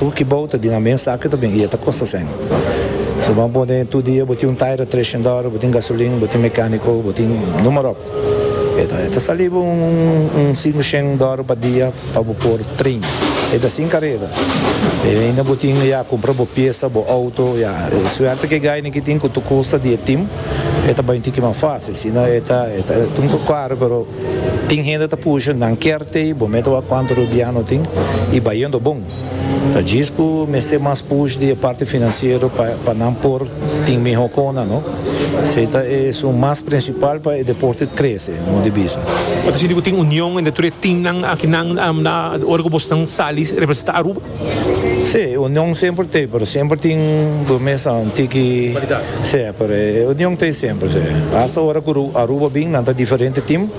Tur kibou ta di nan mes aki ta bin i e ta kosta sen. Si bo a pone tur dia bo tin un taira treshen dòler, bo tin gasolin, bo tin mekániko, bo tin numerop, e ta e ta sali bo un sinku shen dòler pa dia pa bo por trein. E ta sin kareda. E ainda bo tin ya kumpra bo piesa, bo outo, ya. E suerte ku e gaini ki tin ku tur kosta di e tim e ta bai un tiki mas fásil. Si no e ta e ta un poco karu pero tin hende ta pusha nan kier t'ei bo me ta wak kuantu rubiano tin i bai yendo bon. Ta djis cu mester mas push di e parti financiero pa pa nan por tin miho cona no. Esey ta e esun mas principal pa e deporte crece, mi di bisa. Bo ta sinti cu tin union entre tur e teamnan aki nan na ora cu boso nan sali representa Aruba? Sí, union semper t'ey pero semper tin bo mes a un tiki, sí, pero e union t'ey semper, sí. Hasta ora cu Aruba bin nan ta diferente team.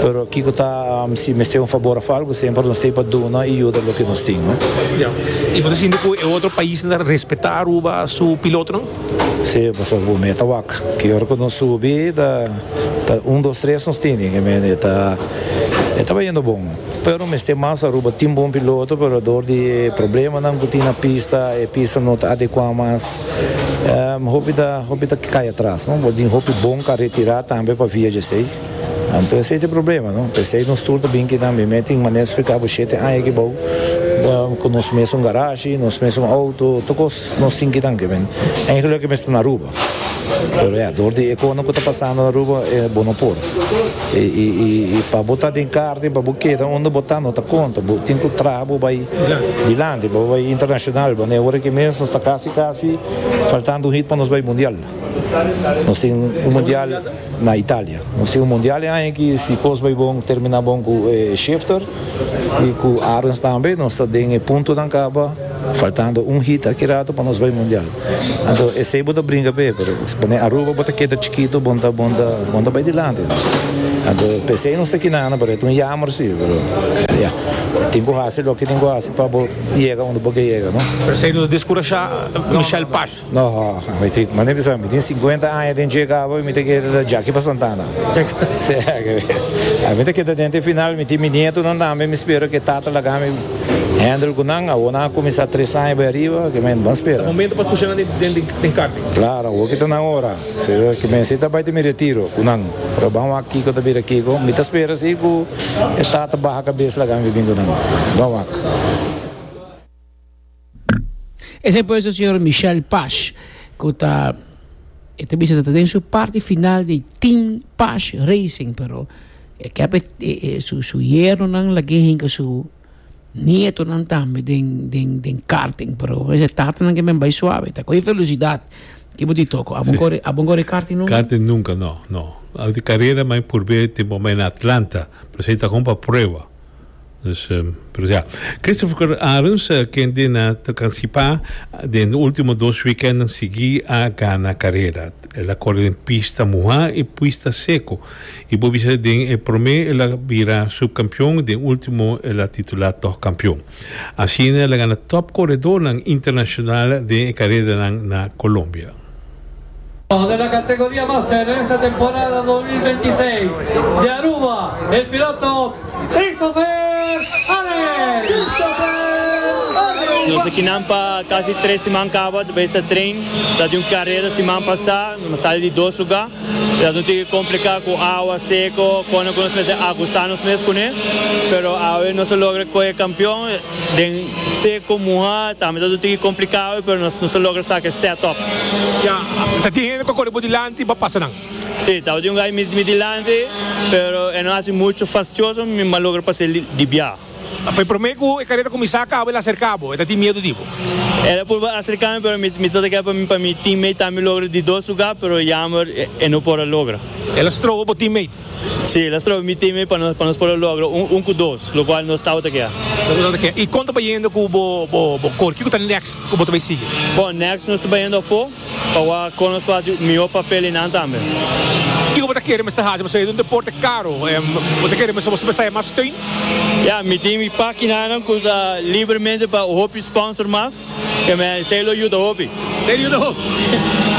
Pero kiko ta si mester un fabor of algo semper nos ta ey pa duna y yuda loke nos tin no. Ya. Y bo ta sinti cu e otro paisnan ta respeta Aruba su pilotonan? Si, pasobra bo mira ta wak. Ki ora cu nos subi ta un dos tres nos tin. Y ta tabata yendo bon. Pero mester mas Aruba tin bon piloto pero ador di e problemanan cu tin na pista e pista no ta adecua mas hopi ta hopi ta cay atras no por tin hopi bon car retira tambe pa via djasey anto esey ta e problema no pesey nos tur ta bin aki tambe me tin manera explica bo shete aña aki bao cu nos mesun garashi nos mesun auto tur cos. Nos tin kinan ke men eigenlijk ke mester na Aruba pero ya dor di e konan ku ta pasando na Aruba bo no por i pa bo ta den karta i pa bo keda unda bo ta no ta konta bo tin ku traha pa bo bai dilanti pa bo bai internashonal bo ne ora aki mes nos ta kasi kasi faltando un hit pa nos bai mundial nos tin un mundial. Na Italia. Nos tin un mundial e aña ki si kos bai bon termina bon ku Schifter i ku Arens tambe nos ta den e puntonan kaba faltando un hit aki ratu pa nos bai mundial. Anto esei bo ta bringa p'e pero si pone Aruba bo ta keda chikitu bon ta bon ta bon ta bai dilanti. Anto p'esei nos ta kina nan pero e ta un yammer si pero ya tin ku hasi loke tin ku hasi pa bo yega unda bo ke yega no. P'esei no ta diskurashá Michel Pash. No, mi tin, manda e bisa, mi tin cincuenta aña den dje cabo y mi ta kere ta Jackie pa Santana. Mi ta keda den te final, mi tin mi nietonan tambe, mi spera cu e tata laga mi handle cu nan, awor nan a cuminsa tres aña bai ariba, cu men, bon spera. Ta momento pa pusha nan den karting. Claro, awor cu ta nan ora, cu men si ta bai ta mi retiro cu nan, ora ban wak kico ta bira kico, mi ta spera si cu e tata baha cabes laga mi bin cu nan, ban wak. Esei pues e señor Michel Pasch cu ta e ta bisa ta den su parti final di Team Pasch Racing pero e kep e su yernonan lag'e hinca su nietonan tambe den den den karting pero pues e tatanan kimen bai suave ta coge velocidad kibo di toco abo no cor abo no cor e karting nunca? Karting nunca no no carera mi a purbe tempo mi a na Atlanta pero esei ta con pa prueba. Nos presentá Christopher Arons, kende na ta kansipa den ultimo dos weekenden sigui a gana karera. El a kore den pista muhá i puista seko. I bo bisa den e promé el a bira supkampion, den ultimo el a titulá tòg kampion. Asina el a gana top koredónan internashonal den e karedanan na Kolombia. Orde na Categoria Master den esta temporada dos mil binti seis di Aruba el piloto Christopher Harris. Nos ta kinan pa casi tres siman caba ta bay sa train, ta tin un carera siman pasa, nos a sali di dos lugar, Dja nos tin ke kompliká ku awa seko, konde ku nos mester agustá nos mes kuné. Pero awe nos a logra kohe kampion den seko, muhá, tambe ta tin ke kompliká awe pero nos nos a logra sa ke sèt òf. Ya, ta tin hende ku a kore bo dilanti pa pasa nan? Sí, ta tin un gai mi dilanti pero e no hasi muchu fastioso, mi m'a logra pas'é di biaha. Fue prome cu e careta cuminsa cabo, el acerca bo, el ta tin miedo di bo. El a purba acerca mi, pero mi ta ta kere pa mi, pa mi teammate tambe logra di dos lugar, pero jammer e no por a logra. El a strobo bo teammate? Si, el a strobo mi teammate pa nos, pa nos por a logra un, un cu dos, lo cual nos tawata kea. Nos tawata kea. Y con ta bayendo cu bo, bo, bo cor? Kico ta next cu bo ta bay sigui? Bon, next nos ta bayendo afo. Pa wak a cono spacio miho papel y nan tambe. Kiko bo ta kere mester haci pa sayo di un deporte caro? Bo ta kere mester bo mester haya mas steun? Ya, mi tin mi paginanan cu ta libremente pa hopi sponsor mas, y mi esey lo yuda hopi. Esey yuda hopi.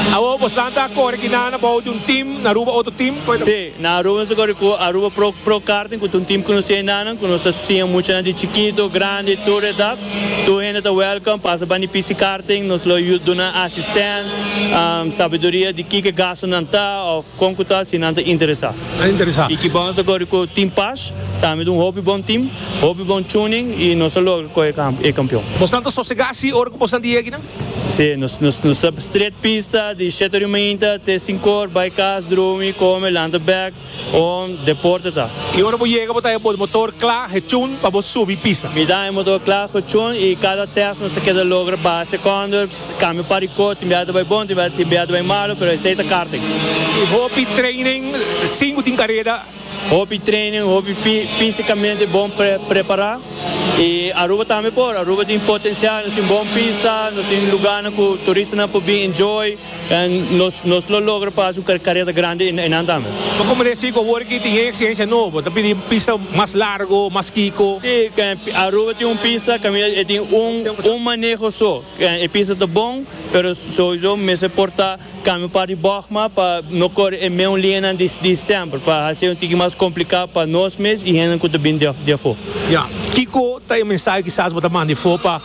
Awor bosan ta core kina na bao di un team na Aruba, otro team? Si, na Aruba nos ta core cu Aruba Pro Karting, cu ta un team conoci ainanan, cu nos ta siña muchanan di chikito, grandi, tur edad. Tur hende ta welcome pasa bandi pisi karting nos lo yu duna asistent sabiduria di kiko e gasto nan ta of kon ku ta si nan ta interesa. Ta interesa. Y ki bon nos ta kore ku team pash tambe ta un hopi bon team hopi bon tuning y nos ta logra kohe e kampion. Bosnan ta sosega si ora ku bosnan ta yegi nan? Si nos nos ta stret pista di shete ori mainta te sinku or bai kas drumi kome lanta bek Un deporte ta. Y ora bo yega bo ta e bo motor cla he chun pa bo subi y pisa. Mi ta e motor cla he chun y cada test nos ta keda logra baha secondo, cambio pa record, tin bia ta bay bon, tin bia ta bay malo, pero esey ta karting. Y hopi training singu tin careda. Hopi training, hopi fisicamente bon prepara y Aruba tambe por, Aruba tin potencial, nos tin bon pista, nos tin lugarnan cu turistanan por bin enjoy. En nos nos lo logra pa haci un careta grandi y nan tambe. Lo como deci cu awor ki tin e exigencia nobo ta pidi pista mas largo, mas kico? Si, Aruba tin un pista caminda e tin un un maneho so. E pista ta bon pero sowiso mester porta cambio par di bogma pa no core e meun liñanan di di semper pa haci un tiki mas complica pa nos mes y hende cu ta bini di di afo. Ya. Kico ta e mensahe kisas bo ta manda ifo pa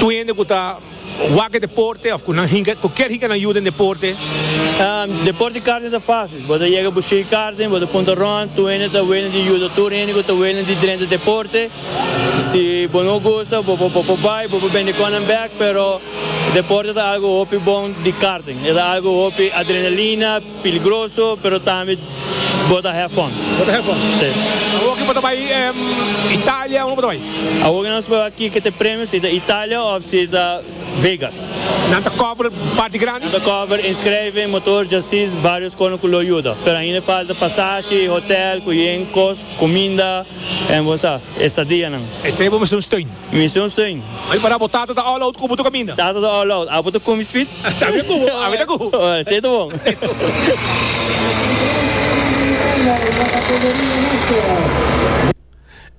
tur hende cu ta. Wak e deporte of ku nan hinka ku kier hinka nan yu den deporte. Deporte di karting ta fásil. Bo ta yega bo shei karting, bo ta punta rònt, tur hende ta wene di yuda, tur hende ku ta wene di drenta deporte. Si bo no gusta bo por bo por bai, bo por bende kon nan bèk, pero deporte ta algu hopi bon di karting. E ta algu hopi adrenalina. Piligroso pero tambe bo ta have fun. Bo ta have fun. Si. Awor ki bo ta bai Italia unda bo ta bai? Awor ki nan scoge aki ke te premio si ta Italia of si ta Vegas. Nan ta cover parti grandi? Nan ta cover inschrijving, motor, chassis, varios cono cu lo yuda. Pero ainda e falta pasashi, hotel, cu yen cos, cuminda, en bo sa, estadianan. Esey bo mester un steun. Mi mision steun. M'a di pará bo tata ta all out ku bo ta kaminda. Tata ta all out, abo ta komi spit? Sabia ku bo, ami ta ku bo. Ora, esei ta bon.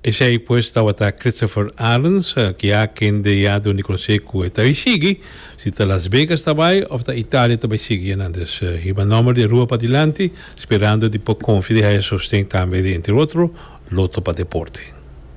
Esei pues tabata Christopher Arends, ki a kende ya dun di konosé ku e ta bai sigui, si ta Las Vegas ta bai òf ta Italia ta bai sigui nan. Dus hiba nòmber di rua padilanti, sperando di por konfia di haya sosten tambe di entre otro loto pa deporte.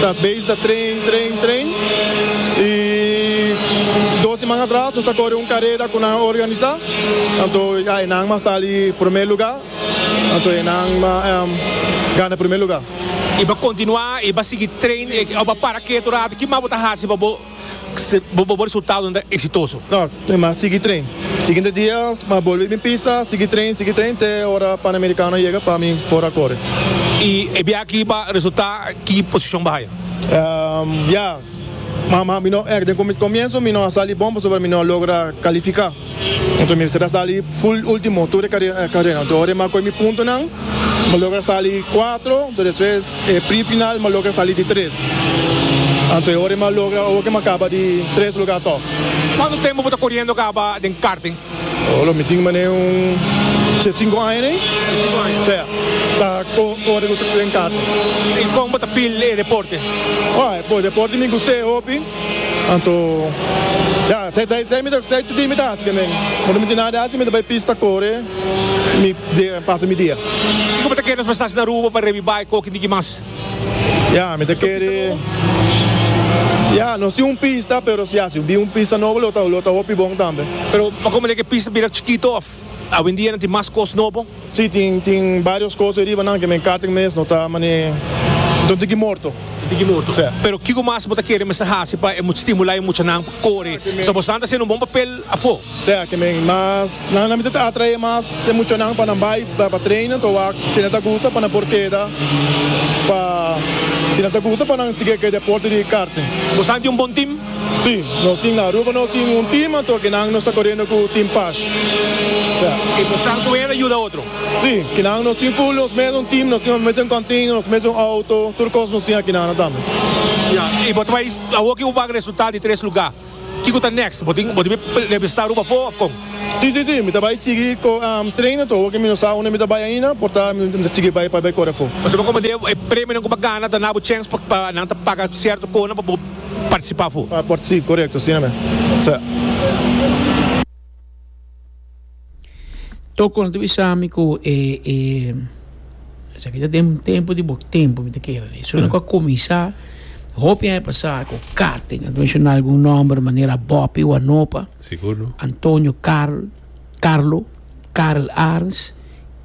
Ta base ta train, train, train. Y dos siman atras nos ta core un carera cu nan a organisa. Anto ya e nan mas sali primer luga. Anto e nan a gana primer luga. Y bo continua y bo sigui train e, o bo para ketu un ratu, ki mas bo ta haci pa bo. Si bo resultado no ta exitoso. No, mi mas sigui train. Siguiente dia mi bolbe bin pisa, sigui train, sigui train te ora Panamericano a yega pa mi por a kore. Y e biaha aki bo a resulta ki posicion bo haya? Ya, mi no, den comienzo mi no a sali bon pasobra mi no a logra califica. Punto mi mester a sali full ultimo tur e carera do ora ma coge mi puntonan mi logra sali di cuatro do despues e pre final mi logra sali di tres anto e ora mi a logra awo ke mi a caba di tres lugar tog. Cuanto tempo bo ta coriendo caba den karting? Oh lo mi tin manera un ce cinco aña den ce ta cori den karting. Y con bo ta feel e deporte? Oh e deporte mi gusta e hopi. Anto, ya, esei ta esei mi ta esei tutu mi ta hasi ke men. No ta miti nada hasi, mi ta bai pista kore, mi dia pasa mi dia. Kiko bo ta kere nos mester hasi na Aruba pa revibai ku oki niki mas? Ya, mi ta kere, ya, nos tin un pista, pero si hasi bin un pista nobo lo ta lo ta hopi bon tambe. Pero pa komo lek e pista bira chikito òf awendia nan tin mas kos nobo? Sí, tin, tin barios cos e ribanan que men caten mes, no ta mane, enton tin ki morto. Tin tin ki morto. Sí. Pero kico mas bo ta kere mester haci pa e stimula e muchanan pa core, pasobra bo stan ta haciendo un bon papel afo? Sí, que men mas, nan a mester ta atrae mas e muchanan pa nan bay pa pa trainen to wak, si nan ta gusta pa nan por keda pa, si nan ta gusta pa nan sigui cu e deporte di karting. Bo stan tin un bon team? Sí, nos tin na Aruba nos tin un team anto ke nan nos ta korendo ku Team Pash. Ya. I nos san ku hende yuda otro? Sí, kinan nos tin full nos mesun team, nos tin nos mesun container, nos mesun auto, tur kos nos tin aki nan nan tambe. Ya. I bo ta bai awo ke bo bak resultat di tres lugá. Kiko ta next? Bo tin bo tin bai representá Aruba afó of kon? Sí, sí, sí, mi ta bai sigui ko traina tur awo ke mi no sa unda mi ta bai ainda, por ta mi ta sigui bai pa bai kore afó. Bo sepa komo dje e premionan ku bo gana ta na bo chèns pa nan ta paga sierto konan pa bo. partisipá fu. Si, korekto, asina mes. Toko no ta bisa mi ku e e esaki ta den tempu di bo tempu mi ta kere di su nan ku a kuminsá hopi aña pasá ku karting a menshoná algun nòmber manera Bòpi Wanopa Antonio Karl Karlo Karl Arns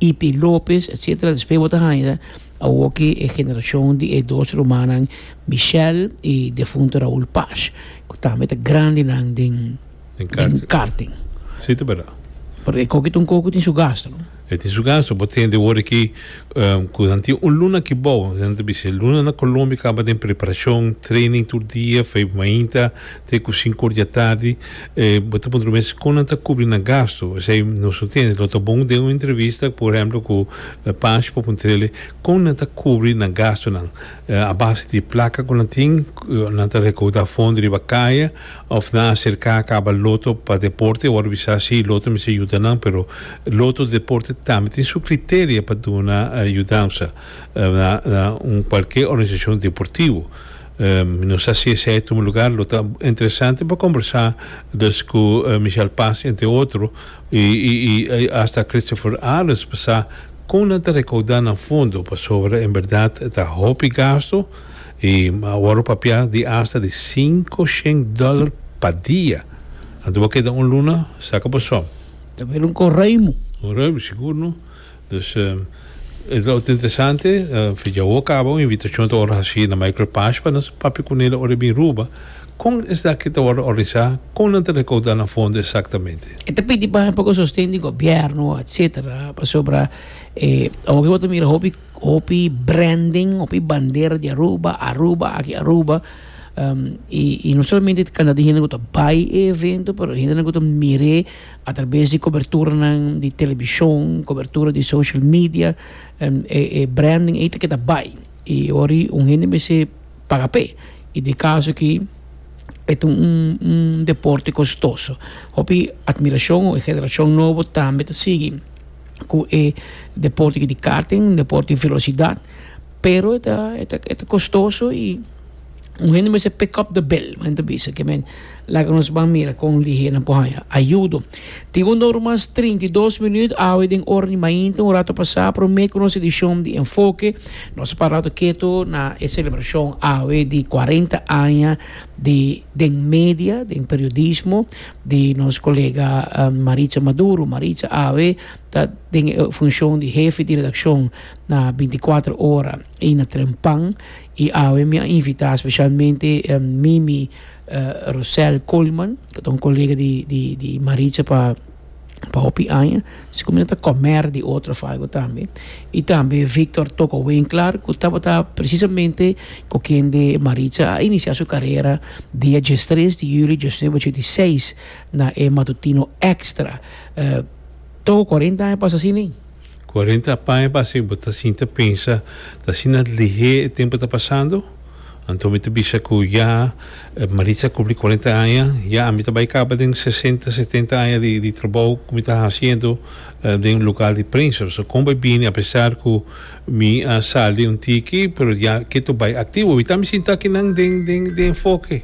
Ipi Lopes etsetera despues bo ta haña. Awoke e generashon di e dos rumannan Michel i defunto Raul Paz, ku tambe ta grandinan den karting. Si ta bera. Pero e koki ta un koki tin su gastu, no? E tin su gastu. Bo tende wor aki ku nan tin un luna aki bou. Nan ta bisha e luna na Colombia kaba den preparashon, training tur dia, fei mainta. Te ku sinku or dja tardi bo ta puntra mes kon nan ta kubri nan gastu. Esei nos no tende. Lo ta bon den un entrevista por ehemplo ku Pash pa puntr'e kon nan ta kubri nan gastunan. A base di e plaka ku nan tin nan ta rekouda fondo riba kaya òf nan aserká a kaba loto pa deporte. E wòrdu bisa si loto mester yuda nan pero loto deporte tambe tin su kriteria pa duna yudansa na un kualke organisashon deportivo. Mi no sa si esei ta un lugar lo ta interesante pa kombersá dus ku Michel Paz, entre otro, i asta Christopher Ares pa sa kon nan ta rekaudá nan fondo pasobra en bèrdat ta hopi gastu i awor papia di asta di sinku shen dòler pa dia. Anto bo keda un luna saka boso. Ta bira un korèimu. Korèimu sigur no. Dus e ta ota interesante Fedja awor caba un invitacion ta worde haci na Michael Pasch pa nos papia cu nel ora e bin Ruba con esaki ta worde organisa con nan ta recauda nan fondo exactamente. E ta pidi pa un sosten di gobierno etcetera pasobra awor cu bo ta mira hopi hopi branding hopi bandera di Aruba Aruba aki Aruba y no solamente cantidad di hende cu ta bay e evento pero hende cu ta mire. A traves di coberturanan di television, cobertura di social media, e branding ey ta keda bay y ori un hende mester paga p'e y den e caso aki e ta un deporte costoso hopi admiracion o e generacion nobo tambe ta sigui cu e deporte aki di karting un deporte di velocidad. Pero e ta e ta e ta kostoso i un hende mester pick up the bill men ta bisa ke men laga nos ban mira kon lihé nan por haña ayudo. Tin un ora mas trinta i dos minuut awe den ora di mainta un rato pasá promé ku nos edishon di Enfoke nos a para rato keto na e selebrashon awe di kuarenta aña di den media den periodismo di nos kolega Maritza Maduro Maritza awe ta den e funshon di hefe di redakshon. na binticuatro ora y na tren pan y awe mi a invita specialmente Mimi Rosel Coleman cu ta un colega di Maritza pa hopi aña asiko mi no ta comer di otro of algo tambe y tambe Victor Toco Winkler cu tabata precisamente cu kende Maritza a inicia su carera dia diestres di julio diosnuebe ochenta y seis na e matutino extra. Toko cuarenta aña pasa asina? Cuarenta paña pasa y bo ta sinti a pensa, Ta asina lihé e tempu ta pasando? Anto mi ta bisa cu ya Maritza a cumpli cuarenta aña, ya ami ta bay caba den sesenta, setenta aña di trabou cu mi ta haciendo den lugar di prensa. Pasobra con bo a bini apesar cu mi a sali un tiki pero ya ketu bay activo. Awitaan mi sinti akinan den enfoke.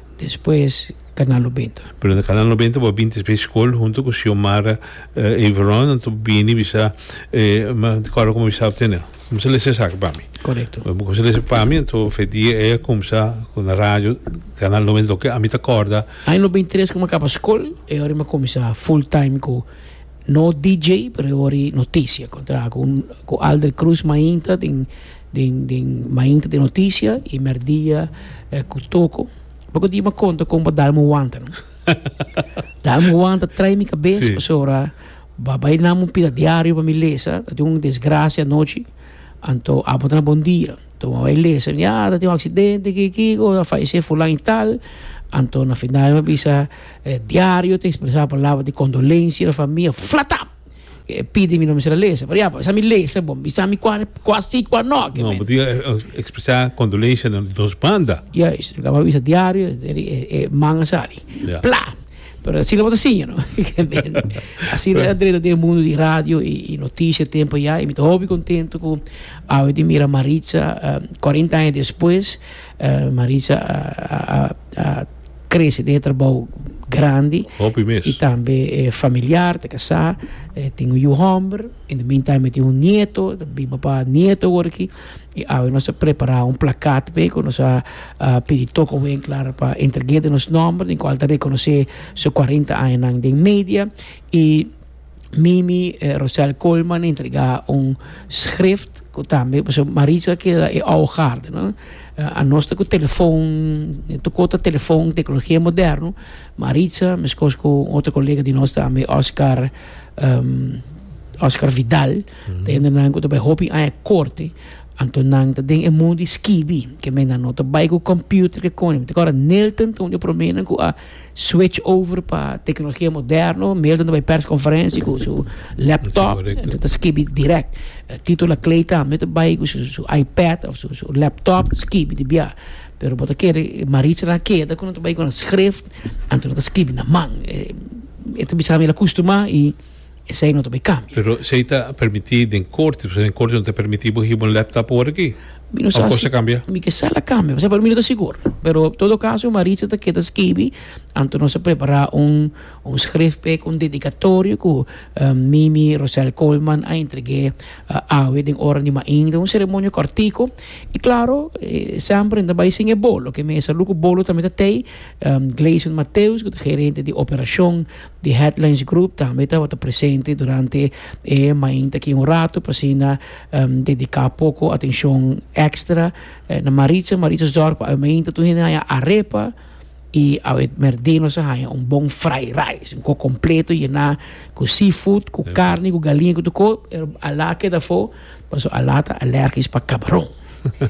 Despues Canal Nobenta. Pero na Canal Nobenta bo a binti espe skol hunto ku Xiomara Averon anto bo bini bisa ma di kòrda ku bo bisa tene kumsa lesa esaki pa mi. Korekto. Bo kumsa lesa pa mi anto fe dia ei a kumsa ku na radio Canal Nobenta loke ami ta kòrda. Aña nobenta i tres ku mi a kaba skol e ora mi a kuminsá full time ku No DJ pero e wòrdu notisia con traha cu cu Aldre Cruz mainta den den den mainta den notisia y merdia cu Toco bo cu di me conta con bo dalme un wanta no dalme un wanta trai mi cabes Sí. pasobra ba bay nan un pida diario pa mi lesa ta tin un desgracia anochi anto abo ta na bon dia anto me bay lesa ya ta tin un accidente ki ki cosa a fallece fulan y tal anto na final mi a bisa E diario ta expresa palabra di condolencia na famia flatap. E pidi mi no mester a lesa. Por ejemplo, esa mi lesa bon, bisa mi cua, cua si, cua no. No, bo tin expresa condolencia na dos banda. Juist, lo caba bisa diario e man a sali. Ya. Pla! Pero asina bo ta siña, no? Asina ta drenta den e mundo di radio y noticia tempo ya y mi ta hopi contento cu awe tin mira Maritza cuarenta aña despues Maritza a crece den e trabao grandi Hopi mes. y tambe e familiar ta casá e tin un yu homber in the meantime e tin un nieto ta biba pa nieto ora aquí y awe nos a prepara un placat pe cu nos a a pidi toco wen clara pa entregue de nos nomber den cual ta reconoce su cuarenta añanan den media y Mimi Rosel Coleman entrega un schrift cu tambe pues Marisa keda e ahogarde no a nos ta cu telefoon tocó ta telefoon tecnologia moderno Marisa mescos cu un otro colega di nos tambe Oscar um, Oscar Vidal ta hende nan cu ta bai hopi aña corte anto nan ta den e mundo di skibi que men nan no ta bai cu computer que con ta cora Nilton ta un di promenan cu a Switch over pa teknologia moderno, Milton ta bai perskonferensia ku su laptop, enton ta skibi dirèk. Tito la Clay tambe ta bai ku su iPad òf su laptop ta skibi di bià. Pero bo ta kere Maritza nan keda ku nan ta bai ku nan skrif, anto nan ta skibi na man. E ta bisa mi el a kustumá i Esei no ta bay cambia. Pero esei ta permiti den corte, pasobra den corte no ta permiti bo hiba un laptop awor aki. Mi no sa si. Of cosa cambia? Mi kesa la cambia, pasobra para mi no ta sigur. Pero en todo caso Maritza ta keda skibi, anto nos a prepara un un schrif p'e con dedicatorio cu Mimi Rosel Coleman a entregue awe den ora di mainta, un ceremonia cortico. Y claro, semper nan ta bay sin e bolo, ke mi a salud cu bolo tambe ta tey. Gleison Mateus cu ta gerente di operacion. Di Headlands Group tambe tabata presente durante e mainta aki un ratu pa asina dedica poco atencion extra na Maritza. Maritza zorg pa awe mainta tur hende haya arepa y awe merdenos a haya un bon fried rice, un kos completo yena cu seafood, cu carne, cu galinha, cu tur kos. Pero Alaa keda afo pasobra Alaa ta alergisch pa cabaron.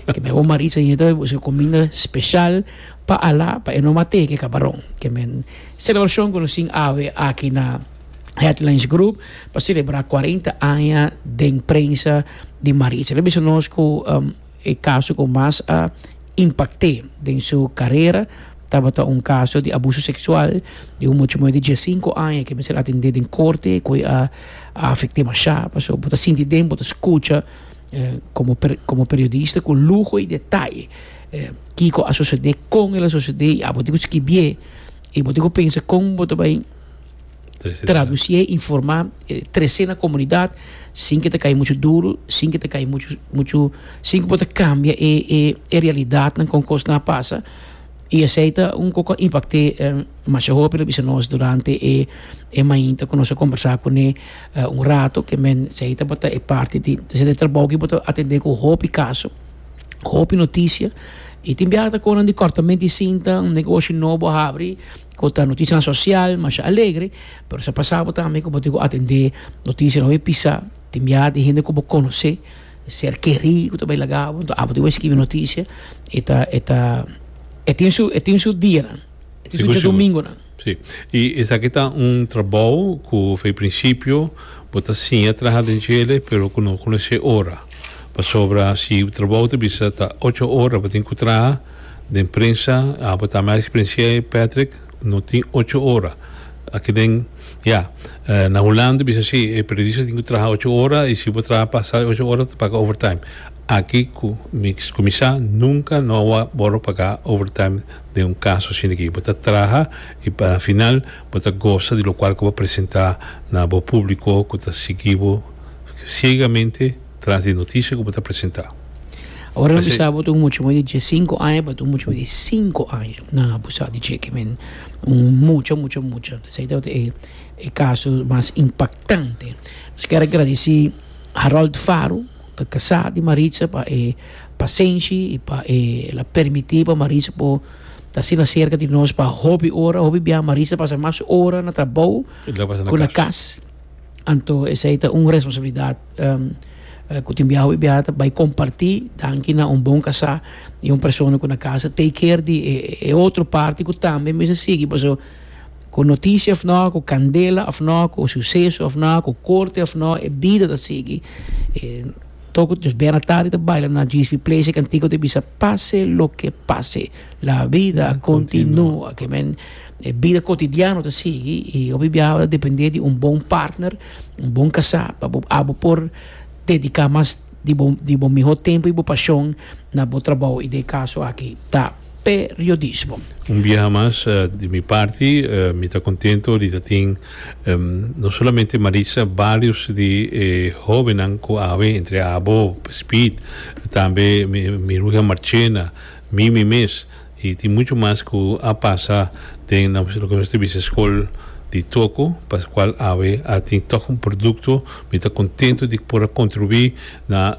Ke men awor Maritza yenta busca cuminda special pa Alaa pa e no mate ke cabaron ke men. Celebracion cu nos tin awe aki na Headlands Group pa celebra cuarenta aña den prensa di Maritza. Ta bisa nos cu e caso cu mas a impacte den su carera tabata un caso di abuso sexual di un mucho mayor di dies cinco aña cu mester atende den corte cu a afecte masha. Paso bo ta sinti den bo ta scucha. Komo komo periodista ku luho i detaye kiko a sosodé, kon el a sosodé i abo tin ku skibié i bo tin ku pensa kon bo ta bai tradusí e informá e tres'é na komunidat sin ke ta kai muchu duru, sin ke ta kai muchu muchu sin ku bo ta kambia e e e realidatnan kon kosnan a pasa i esei ta un ku a impakté masha hopi lo bisa nos durante e mainta ku nos a kombersá kuné. Un rato ke men sei tabata e parti di e trabou ki bo ta atendé ku hopi kaso, hopi notisia, i tin biaha ta kon nan di kòrtamente di sinta, un negoshi nobo a habri ku ta notisianan sosial, masha alegre, pero sa pasa bo tambe ku bo tin ku atendé notisia nobo e pisa, tin biaha tin hende ku bo konosé, ser kerí ku ta bai laga bo, abo tin bai skibi notisia, e ta e tin su e tin su dianan, e tin su diadomingunan. Si. I esaki ta un trabou ku fei prinsipio bo ta siña traha den djele pero ku no konosé ora. Pasobra si bo trabou ta bisa ta ocho ora bo tin ku traha den prensa abo ta merk sprensia ei Patrick no tin ocho ora. Aki den ya na Hulanda bisa si e periodista tin ku traha ocho ora i si bo traha pasa e ocho ora ta paga overtime. Aki ku mi kuminsá nunka no a wòrdu pagá overtime. den un kaso asina aki. Bo ta traha i pa final bo ta gosa di lokual ku bo presentá na bo públiko ku ta sigui bo siegamente tras di notisia ku bo ta presentá. Ora nan bisa bo ta un muchanan di dies sinku aña pa un muchanan di sinku aña nan abusá di dje. Kimin un mucha, mucha, mucha. Esei tabata e e kaso mas impaktante. Nos kier a gradisí Harold Faro. ta kasá di Maritza pa e pasenshi i pa e la permití pa Maritza por ta asina serka di nos pa hopi ora. Hopi biaha Maritza ta pasa mas ora na trabou ku na kas. Anto esei ta un responsabilidat ku tin biaha hopi biaha ta bai kompartí danki na un bon kasá i un persona ku na kasa take care di e otro parti ku tambe mester sigui paso. Ku noticia of no, ku candela of no, ku suceso of no, ku corte of no, e bida ta sigui. E toco nos bena tardi ta baila na GSP Place e cantico ta bisa pase lo ke pase, la vida continua. Ke men e bida cotidiano ta sigui i hopi biaha bo ta depende di un bon partner, un bon casá pa bo abo por dedica mas di bo di bo mihó tempu i bo pashon na bo trabou i den e kaso aki ta periodismo. Un biaha mas di mi parti mi ta kontentu di ta tin no solamente Maritza barios di e hóbennan ku awe entre abo Speed tambe mi mi ruhe Marchena Mimi mes. Y tin mucho mas cu a pasa den loke nos ta bisa School di Toco, pa cual awe a tin toch un producto. Mi ta contento di por a contribui na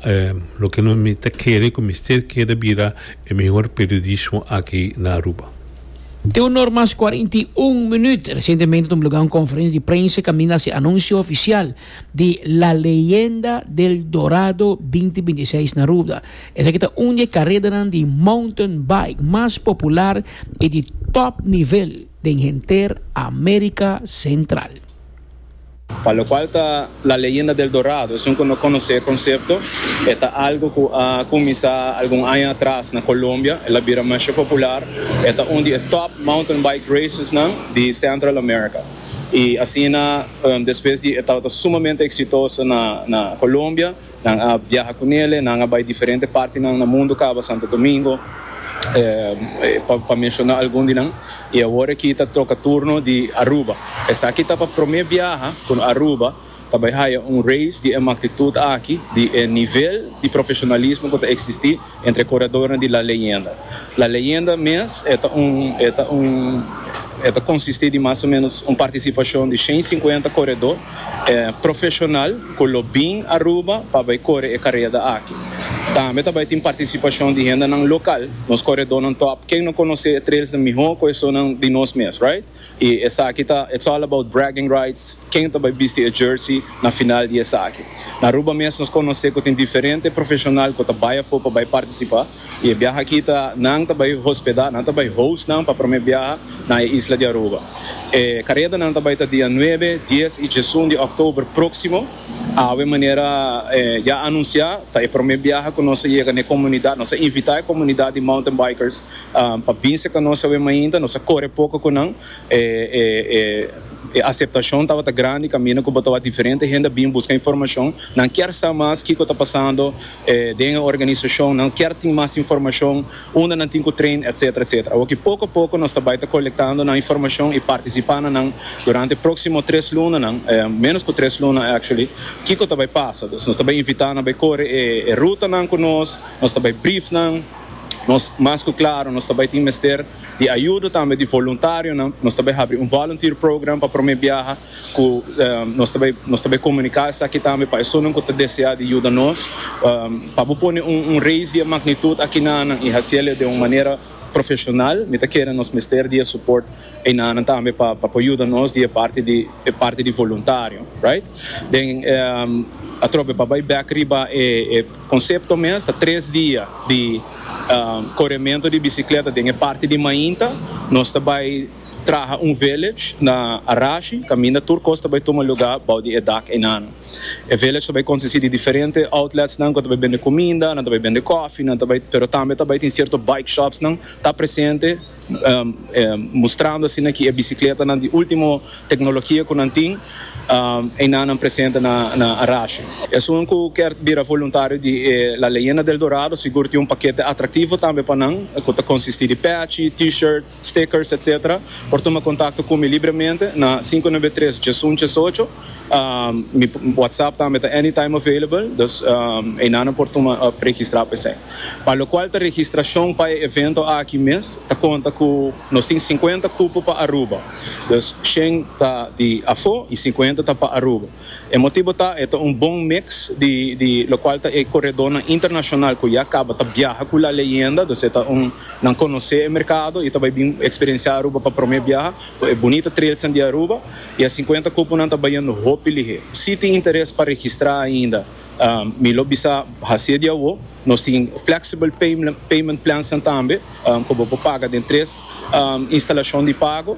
loke mi ta kere cu mester keda bira e mehor periodismo aki na Aruba. Te un or mas cuarenta y un minuut. Recientemente ta omblogá un conferencia di prensa caminda haci anuncio oficial di La Leyenda del Dorado binti binti seis na Aruba. Esaki ta un di e karedanan di mountain bike mas popular i di tòp nivel den henter Amérika Sentral. Pa lokual ta La Leyenda del Dorado, esun ku no konosé e konsepto, e ta algu ku a kuminsá algun aña atras na Kolombia, el a bira masha popular, e ta un di e tòp mountain bike racesnan di Central America. I asina despues di e tabata sumamente eksitoso na Kolombia, Nan a biaha cu nele, nan a bay diferente partinan na mundo caba Santo Domingo, pa menciona algun di nan, y awor aki ta troca turno di Aruba. Esaki ta pa prome biaha cu Aruba ta bay haya un race di e magtitud aki, di e nivel di profesionalismo cu ta existi. Entre curadornan di La Leyenda. La Leyenda mes e ta un e ta un e ta consisti di mas o menos un participacion di shen cincuenta coredor profesional cu lo bin Aruba pa bay core e careda aki. Tambe ta bay tin participacion di hendenan local, nos coredornan top. Ken no conoce e trailsnan miho cu esonan di nos mes, right? Y esaki ta It's all about bragging rights, ken ta bay bisti e jersey na final di esaki. Na Aruba mes nos conoce cu tin diferente profesional cu ta bay afo pa bay participa y e biaha aki ta nan ta bay hospeda, nan ta bay host nan pa prome biaha na e isla di Aruba. E caredanan ta bay ta dia nuebe, dies y diesun di october proximo. Awe manera ya anuncia ta e prome biaha cu nos a yega n'e comunidad, nos a invita e comunidad di mountain bikers pa bin seca nos awe mainta nos a core poco cu nan e e e aceptacion tabata grandi caminda cu bo ta wak diferente hende a bin busca informacion nan kier sa mas kico ta pasando den e organisacion nan kier tin mas informacion unda nan tin cu train etcetera etcetera awo ki poco poco nos ta bay ta colectando nan informacion y participa na nan durante proximo tres lunanan menos cu tres luna actually kico ta bay pasa nos ta bay invita nan bay core e e rutanan cu nos nos ta bay brief nan. Nos, mas ku klaro, nos ta bai tin mester di ayudo tambe di voluntarionan. Nos ta bai habri un volunteer program pa promé biaha ku nos ta bai nos ta bai komuniká esaki tambe pa esunnan ku ta deseá di yuda nos. Pa bo pone un un reis di e magnitud aki nanan i hasiel e den un manera profeshonal, mi ta kere nos mester di e suport. Eina nan tambe pa pa por yuda nos di e parti di e parti di voluntario right den atrobe pa bai bek riba e e concepto mes ta tres dia di coremento di bicicleta den e parti di mainta nos ta bai traha un village na Arashi caminda tur cos ta bai tuma lugar bou di e dak einana e village ta bai consisti di diferente outlets nan cu ta bai bende cuminda nan ta bai bende coffee nan ta bai pero tambe ta bai tin cierto bike shops nan ta presente mustrando asina ki e bisikletanan di ultimo teknologia ku nan tin eina nan presente na Arashi. Esun ku ker bira voluntario di e La Leyenda del Dorado sigur tin un pakete atraktivo tambe pa nan ku ta konsistí di pèchi, T-shirt, stickers etc. Por tuma kontakto ku mi libremente na sinku nebe tres djesun djesocho. Mi WhatsApp tambe ta anytime available, dus einanan por tuma of registra pa esei. Pa lokual ta registrashon pa e evento aki mes ta konta ku nos tin sinkuenta kupo pa Aruba, dus shen ta di afó i sinkuenta ta pa Aruba. E motibu ta e ta un bon miks di di lokual ta e koredónan internashonal ku ya kaba ta biaha ku La Leyenda, dus e ta un nan konosé e merkado i ta bai bin eksperensiá Aruba pa promé biaha ku e bunita trailsnan di Aruba. Y e cincuenta cuponan ta bayendo hopi lihé. Si tin interes pa registra ainda, mi lo bisa haci'e di awo. Nos tin flexible payment plansnan tambe, cu bo por paga den tres instalacion di pago.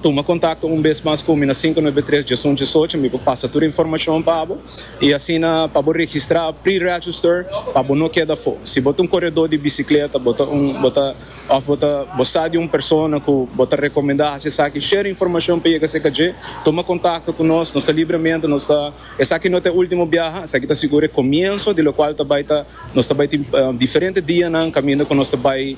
Tuma contacto un bes mas cu mi na sinku noebe tres djesun djesocho, mi por pasa tur e informacion pa bo. Y asina pa bo registra pre-register pa bo no keda afo. Si bo ta un coredo di bicicleta, bo ta un, bo ta. Òf bo ta bo sa di un persona ku bo ta rekomendá hasi esaki, share informashon pa yega serka dje. Tuma kontakto ku nos, nos ta Libremente, nos ta Esaki no ta e último biaha, esaki ta sigur e komienso di lokual ta bai ta nos ta bai tin diferente dianan kaminda ku nos ta bai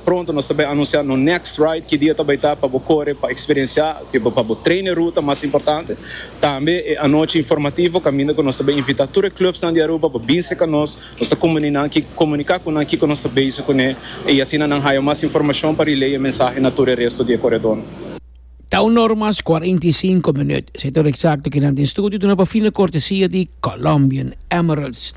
pronto nos ta bai anunsiá nos next ride ki dia ta bai ta pa bo kore pa eksperensiá pa bo train e ruta mas importante tambe e anochi informativo kaminda ku nos ta bai invitá tur e clubsnan di Aruba pa bin serka nos Nos ta comuní nan ki comunica cu nan kico nos ta bezig cune y asina nan haya mas informacion pa relay e mensahe na tur e resto di e coredor. Ta un or mas cuarenta y cinco minuut. Sa e tur exacto cu nan tin studio duna pa fina cortesia di Colombian Emeralds.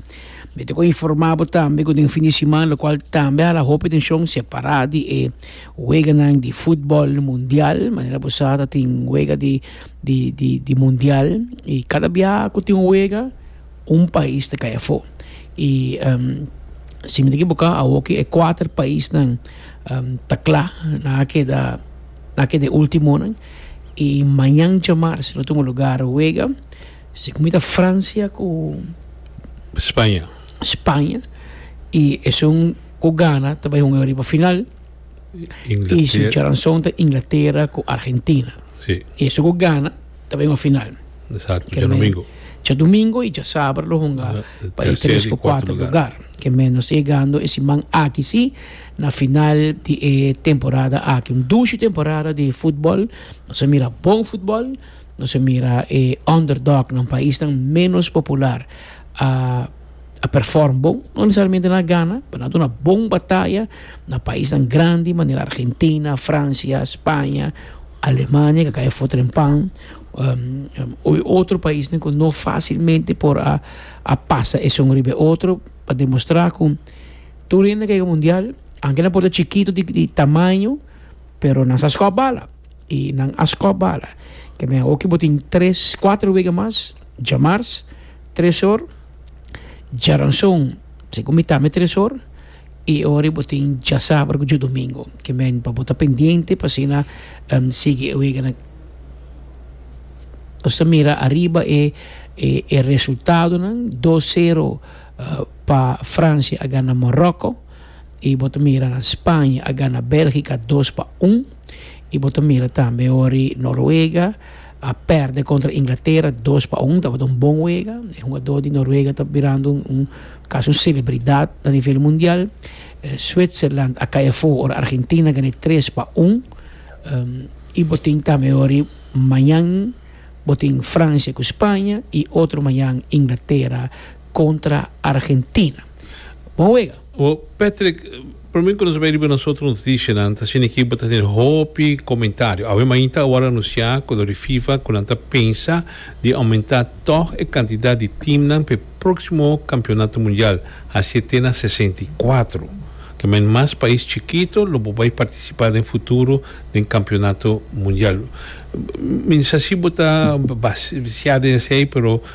Mi ta cu informa bo tambe cu den fin di siman locual tambe hala hopi atencion separa di e weganan di futbol mundial. Manera bo sa ta tin wega di di di mundial y cada bia cu tin un wega. un pais ta kai afó y si mi ta ekiboká awor ki e kuater paisnan ta kla nan a keda nan a keda e ultimonan y mañan djamars lo tin un lugar wega si ku mi ta Francia ku Spaña y esun ku gana ta bai hunga riba final y su charanson ta Inglatera ku Argentina y esun ku gana. ta bay un final. Exacto, dje domingo. Dje domingo y dje saber lo hunga pa e tres cu cuatro lugar. Ke men nos yegando e siman aki si na final di e temporada aki. Un dushi temporada di futbol. Nos a mira bon futbol, nos a mira e underdog nan, paisnan menos popular a. a perform bon, no necesariamente nan a gana, pero nan a duna bon bataya na paisnan grandi manera Argentina, Francia, Spaña, Alemania ke kaya for trempan y otro paisnan ku no facilmente por a a pasa esun riba e otro pa demostra ku tur hende ke yega mundial aunke nan por ta chikito di di tamaño pero nan sa skop bala y nan a skop bala, te me aho ke bo tin tres, kuater wega mas djamars. Tresor, Djaranson, segun mi tambe Tresor, e ora bo tin dja sabado ku dja domingo. Ke men pa bo ta pendiente pa asina sigui e weganan. Nos ta mira ariba e e resultadonan, dos sero pa Francia a gana Moroko, i bo ta mira Spaña a gana Belgika dos pa un, i bo ta mira tambe ora Noruega. A perde kontra Inglatera dos pa un. Tabata un bon wega. E hugadó di Noruega ta birando un kasi un selebridat na nivel mundial. Switserland a kai afó ora Argentina gana tres pa un. I bo tin tambe orí mañan bo tin Francia ku Spaña i otro mañan Inglatera kontra Argentina. Bon wega. Bo Patrick, prome ku nos a bai riba nosotros nos dicinan ta sinikí bo ta tene hopi komentario. Awe mainta awor anunciá ku lo di Fifa ku nan ta pensa di aumentá tòg e kantidat di teamnan pa e próksimo Kampionato Mundial hasié te na sesenta i kuatro. Ke men mas pais chikito lo por bai partisipá den futuro den Kampionato Mundial. Mi no sa si bo ta basiá den esei pero.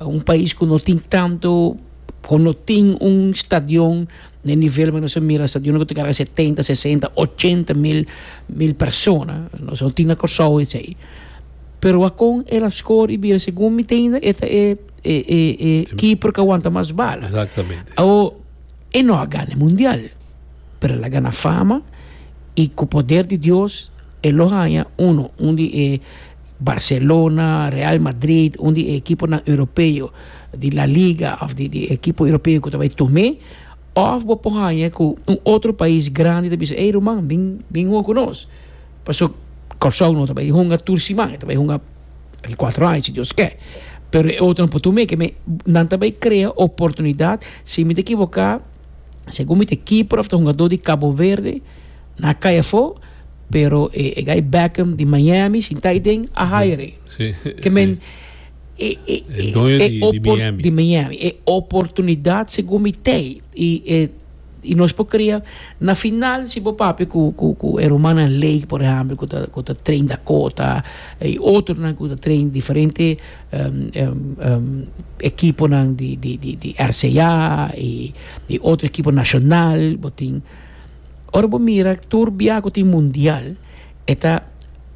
Un pais ku no tin tantu ku no tin un stadion na e nivel ku nos a mira stadion ku ta kaba setenta sesenta ochenta mil mil persona nos a tin na Kòrsou esei pero wakon el a skor i bira segun mi teinda e ta e e e keeper ku wanta mas bal awo e no a gana e mundial pero el a gana fama i ku poder di Dios e lo haña uno un di e Barcelona, Real Madrid, un di e ekiponan europeo di La Liga òf di e ekipo europeo ku ta bai Tomé, òf bo por haña ku un otro pais grandi ta bisa, ey ruman, bin bin hunga ku nos. Paso Kòrsou no ta bai hunga tur siman, e ta bai hunga di kuater aña si Dios ke. Pero e otronan por Tomé ke men nan ta bai krea oportunidat, si mi ta ekiboká segun mi ta kipper òf ta hungadó di Kaboverde, Na cay afo, pero e e guy Beckham di Miami sin ta aden a hire e. Sí. Ke men e e E doño di- di opor- Miami. di Miami. E oportunidad segun mi tey y e y nos por crea na final si bo papia cu cu cu e rumannan Lake por ehempel cu ta cu ta train Dakota y otronan cu ta train diferente em em em ekiponan di di di di RCA y y otro ekipo nacional bo tin Ora bo mira tur biaha ku tin mundial e ta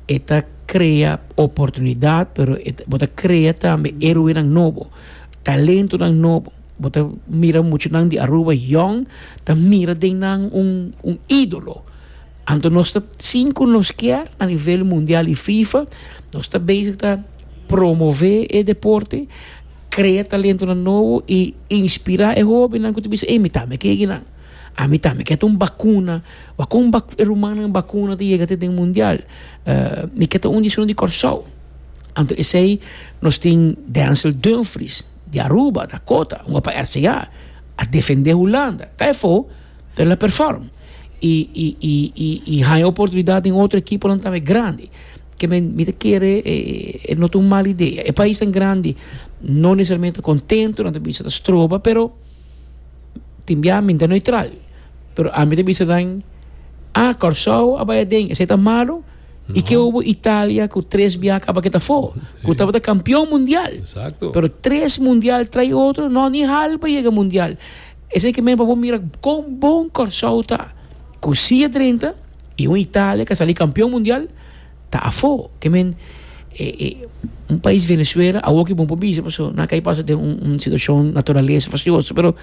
e ta krea oportunidat pero bo ta krea tambe eroenan nobo, talentonan nobo, bo ta mira muchanan di Aruba yòn ta mira den nan un un ídolo, anto nos ta sin ku nos kier a nivel mundial i fifa nos ta bezig ta promove e deporte, krea talentonan nobo i inspirá e hóbennan ku ta bisa ey mi tambe ke kinan. Ami ta mi ke ta un bakuna wak kon rumannan bakuna ta yega te den mundial mi ke ta un di esun di Kòrsou anto esei nos tin Denzel Dumfries di Aruba ta kota un wak pa RCA a defende Hulanda ta efo pero el a perform i i i i i haña oportunidat den otro ekiponan tambe grandi ke men mi ta kere e no ta un mal idea e paisnan grandi no nesesariamente ta kontento nan ta bisa ta stroba pero tin bia mi ta neutral pero ami ta bisa nan ah Kòrsou a bai aden esei ta malu i ke hopi Italia ku tres bia a kaba ke ta afó ku tabata kampion mundial pero tres mundial trai otro nò ni hal pa yega mundial esei ke men pa bo mira kon bon Kòrsou ta ku sia drenta i un Italia ku a sali kampion mundial. ta afó. Te men e e un pais Venezuela awor ki bon pa bisa paso nan a kai pasa den un un situashon naturalesa fasioso pero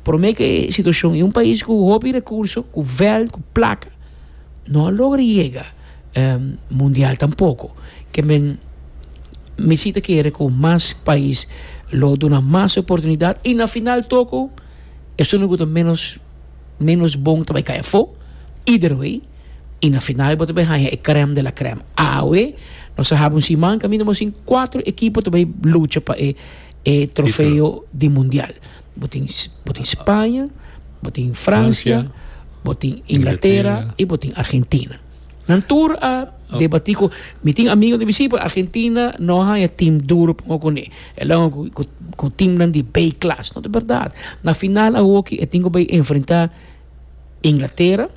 prome ke e situashon i un pais ku hopi rekurso ku vèlt ku plaka no a logra yega mundial tampoko ke men mi si ta kere ku mas pais lo duna mas oportunidat i na final toko esun loke ta menos menos bon ta bai kai afó either way. y na final bo ta bay haña e crème de la crème. Awe nos a hab un siman caminda bo sin cuatro equipo ta bay lucha pa e e trofeo di mundial. Bo tin bo tin Spanje, bo tin Francia, bo tin Inglaterra y bo tin Argentina. Nan tur a debati cu mi tin amigo ta bisi pero Argentina no a haña team duro pa hoco cune. El a hoco cu cu team nan di B class. No ta berdad. Na final a hoki e tin cu bay enfrenta. Inglatera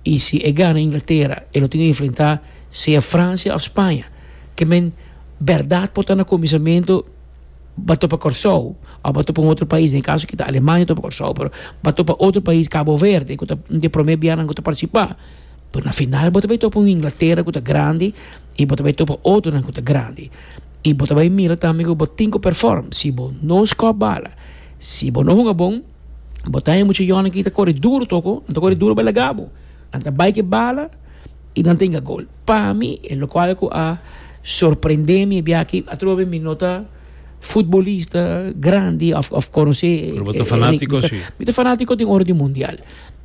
y si e gana Inglatera e lo tin que enfrenta sea Francia of Spaña que men berdad por ta na comisamento ba topa Corsou of ba topa un otro pais den e caso aki ta Alemania topa Corsou pero ba topa otro pais Cabo Verde cu ta un den e prome bia nan cu ta participa pero na final bo ta bay topa un Inglatera cu ta grandi y bo ta bay topa otronan cu ta grandi y bo ta bay mira tambe cu bo tin cu perform si bo no score bala si bo no hunga bon. Bo ta e mucha yònan ki ta kore duru toko, nan ta kore duru bela gabo. Nan ta bai ke bala i nan ta inga gol. Pa mi, e lokual ku a sorprendé mi e biaha atrobe mi no ta futbolista grandi òf, òf konosé. Pero bo ta fanátiko si. Mi ta fanátiko den ora di mundial.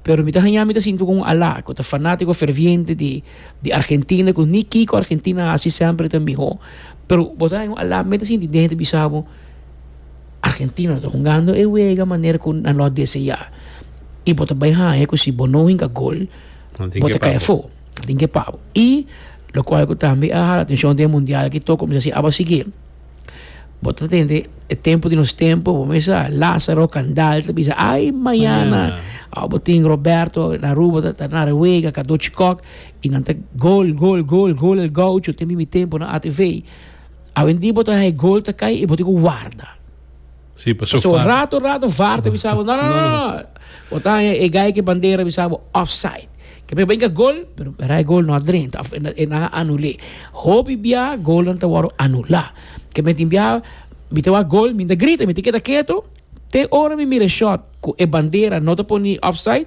Pero mi ta haña mi ta sinti ku un alá ku ta fanátiko ferviente di, di Argentina ku ni kiko Argentina a hasi sèmper e ta mihó. Pero bo ta haña un alá, mi ta sinti den hende bisa bo, Argentina ta hungando e wega manera ku nan lo deseá i bo ta bai haña ku si bo no hinka gol bo ta kai afó, nan tin ke pa bo. I lokual ku tambe a hala atenshon den e mundial aki tok kuminsá si aba sigui bo ta tende e tempu di nos tempu bo mes sa Lázaro Kandal ta bisa ai mañana awe bo tin Roberto na Aruba ta ta nare wega Kadochi Kòk i nan ta gol gol gol gol el Goucho tempu mi tempu na atv. Awendí bo ta haña e gol ta kai i bo tin ku warda. Sí, pasobra Pasobra far. rato rato var ta bisa bo, no, no, no, no, bo ta haña e gai ku e bandera bisa bo offside. Ke mester brinka gol, pero bira e gol no a dren, ta, e nan a anul'é. Hopi bia golnan ta wòrdu anulá. Ke mi tin bia, mi ta wak gol, mi no ta grita, mi ta keda ketu te ora mi mira e shòt ku e bandera no ta pone offside.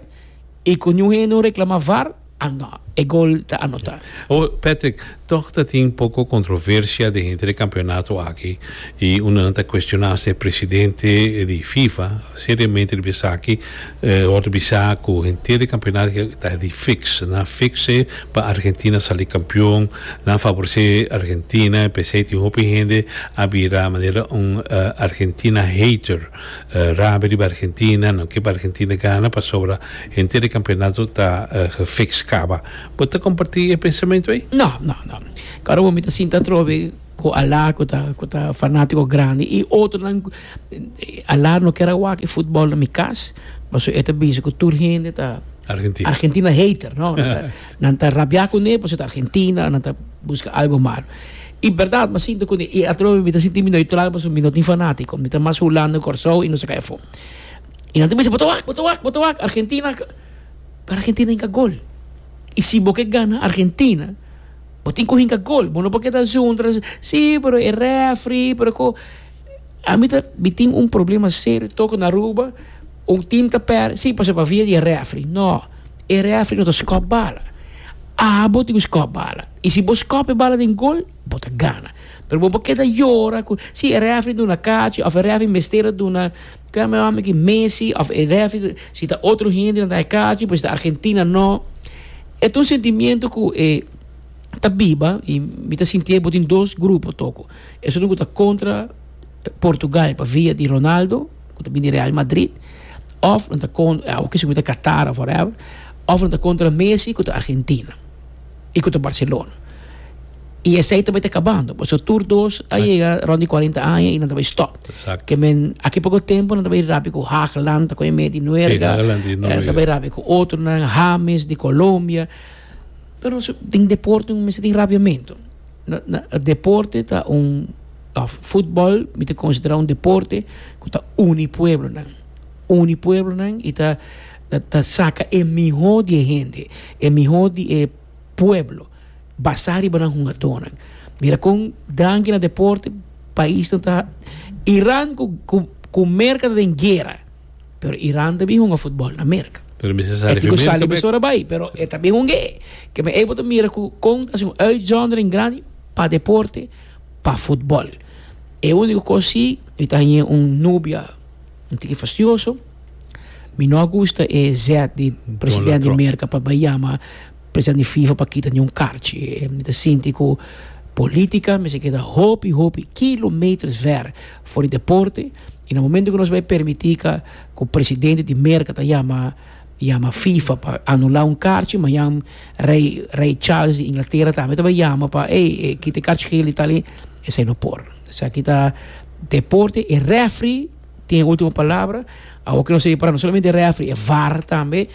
Y cu ñu hende un reclama var, ano, e gol ta anota. O, Patrick, toch ta tin poco controversia den henter e campeonato aki y undenan ta cuestiona hasta e presidente di Fifa seriamente riba esaki, ora ta bisa cu henter e campeonato aki ta di fix, nan fix e pa Argentina sali campeon, nan favorece Argentina, p'esey tin hopi hende a bira manera un Argentina hater. Rabia riba Argentina, no ke pa Argentina gana pasobra henter e campeonato ta gefiks caba. Bo ta comparti e pensamentu ey? No, no, no. Caru bo mi ta sinta atrobe cu Alain cu ta cu ta fanatico grandi y otronan. Alain no kier a wak e futbol na mi cas pasobra e ta bisa cu tur hende ta Argentina hater, no. Nan ta rabia cune pasobra ta Argentina, nan ta busca algo malo. I berdad mi a sinti cu e atrobe mi ta sinti mi neutral pasobra mi no tin fanatico. Mi ta mas Hulanda, Corsou y nos a cay afo. Y nan ta bisa bo ta wak, bo ta wak, bo ta wak Argentina ca. Pero Argentina a hinca gol. Y si bo ke gana Argentina bo tin cu hinca gol. Bo no por keda zundra si pero e refri pero cu. A mi ta, mi tin un problema serio toco na Aruba. Un tim ta pèrdè, sí, pasobra bia di e rèfri. Nò, e rèfri no ta skòp bala. Abo tin ku skòp bala. I si bo skòp e bala den gol, bo ta gana. Pero bo por keda yora ku, sí, e rèfri duna kachi òf e rèfri mester a duna, ke ame hòmber aki, Messi òf e rèfri, si ta otro hende nan ta dai kachi, pero si ta Argentina nò. E ta un sentimiento ku e ta biba i mi ta sintié bo tin dos grupo toko. Esun ku ta kontra Portugal pa via di Ronaldo. ku ta bini Real Madrid òf nan ta awo kisti kumina ta Qatar òf whatever òf nan ta kontra Messi ku ta Argentina i ku ta Barcelona i esei ta bai ta kabando pasobra tur dos a yega rònt di kuarenta aña i nan ta bai stòp ke men aki poco tempu nan ta bai rabi ku Hagland ta koi medi nuerga nan ta bai rabi ku otronan Hames di Colombia. Pero si tin deporte un mester tin rabiamentu. Deporte ta un, òf futbòl mi ta konsiderá un deporte ku ta uni pueblonan, uni pueblonan i ta ta saka e mihó di e hende, e mihó di e pueblo basá riba nan hungadónan. Mira kon tranki na deporte paisnan ta Iran ku ku ku Merka ta den guera. Pero Iran ta bin hunga futbol na Merka. Pero mi sa sali fi Merka bek. E tin ku sali mesora bai, pero e ta bin hung'é. Ke mi ey bo ta mira ku kon ta hasi un uitzondering grandi pa deporte, pa futbol. E úniko kos si, mi ta hañ'é un nubia un tiki fastioso. Mi no a gusta e zèt di presidènt di Merka pa bai yama President di fifa pa kita niun karchi. Mi ta sinti ku polítika mester keda hopi hopi kilometers ver for di deporte i na momento ku nos bai permití ka ku presidente di Merka ta yama yama fifa pa anulá un karchi mañan rei rei Charles di Inglatera tambe ta bai yama pa ey e kita e karchi gel i tal i esei no por. Esaki ta deporte e refri tin e ultimo palabra awor ke nos ta ripará no solamente refri e var tambe.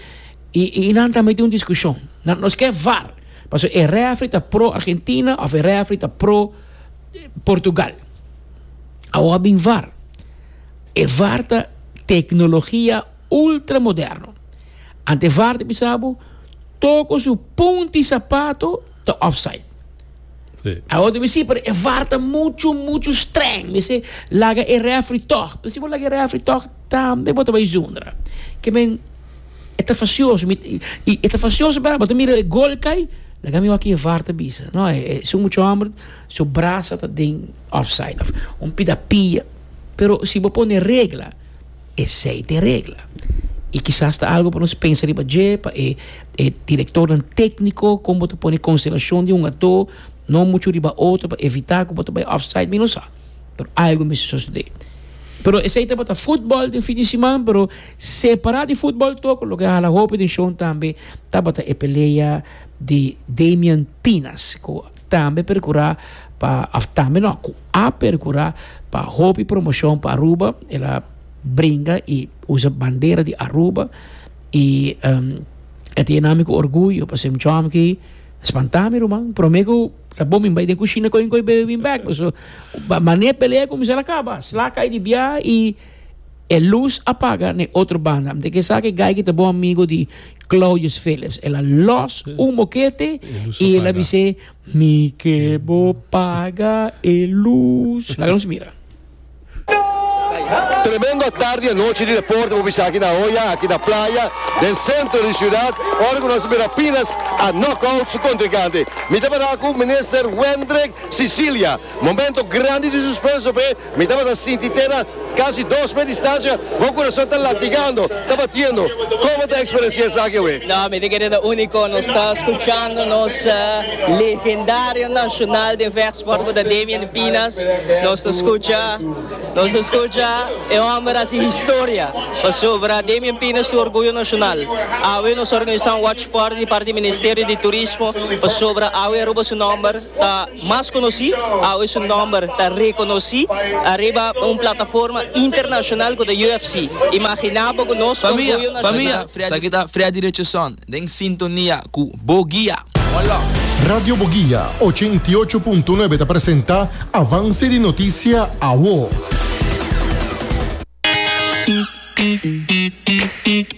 I i nan tambe tin un diskushon, nan nos ke var, pasobra e refri ta pro Argentina of e refri ta pro Portugal. Awo a bin var. E var ta teknologia ultra moderno. Ante var ta bisa bo toko su punti sapato ta offside. Awor ta mi si pero e var ta mucho mucho streng mi si laga e referee tog pero si bo laga e referee tog tambe bo ta bay zundra ke men e ta facioso mi y e ta facioso bra bo ta mira e goal cay laga mi hoor ki e var ta bisa no es un mucho homber su brasa ta den offside of un pida pia pero si bo pone regla. Esei ta e regla. I kisas ta algu pa nos pensa riba dje, pa e e direktornan tékniko, kon bo ta pone konsentrashon di un ató no muchu riba otro pa evitá ku bo ta bai òfsaid, mi no sa. Pero algu mester sosodé. Pero esei tabata futbòl den fin di siman, pero separá di futbòl tok loke a hala hopi atenshon tambe tabata e pelea di Damian Pinas ku Tambe percura pa of tambe no cu a percura pa hopi promocion pa Aruba el a bringa y usa bandera di Aruba y e ta yenami cu orguyo pa ser un chom ki spanta mi ruman prome cu ta bo mi bai den cushina coyo un coyo bebe bin bek pasobra mane pelea a cuminsa a caba sla cay di biaha y E lus a paga na e otro banda. M'ta kesaki Geikie ta bon amigo di Claudius Phillips. El a los un bokete i el a bis'é, Mi ke bo paga e lus. Laga nos mira. Tremendo tardi i anochi di deporte bo bisa aki na Hoya, aki na playa, den sentro di siudat, ora ku nos a mira Pinas a knock out su kontrinkante. Mi ta para ku Minister Wendrick Cecilia. Momento grandi di suspenso p'e. Mi tabata sinti tera casi dos mes distancia, bo corazon ta latigando, ta batiendo. Como ta experiencia esaki awe? No, mi tin keda ta unico. Nos ta scuchando nos legendario nacional den vechtsport cu ta Damian de Pinas. Nos ta scucha, nos ta scucha e homber haci historia pasobra Damian Pinas tu orgullo nacional. Awe nos organisa un watch party di parti di Ministerio di Turismo pasobra awe Aruba su nomber. ta mas konosí, awe su nòmber ta rekonosí ariba un plataforma internashonal ku ta UFC. Imaginá bo ku nos orguyo nashonal. Famia, esaki ta Freddy Richardson den sintonia ku Bo Guia. Radio Bo Guia ochenta i ocho punto nuebe ta presenta Avance di Noticia Awo.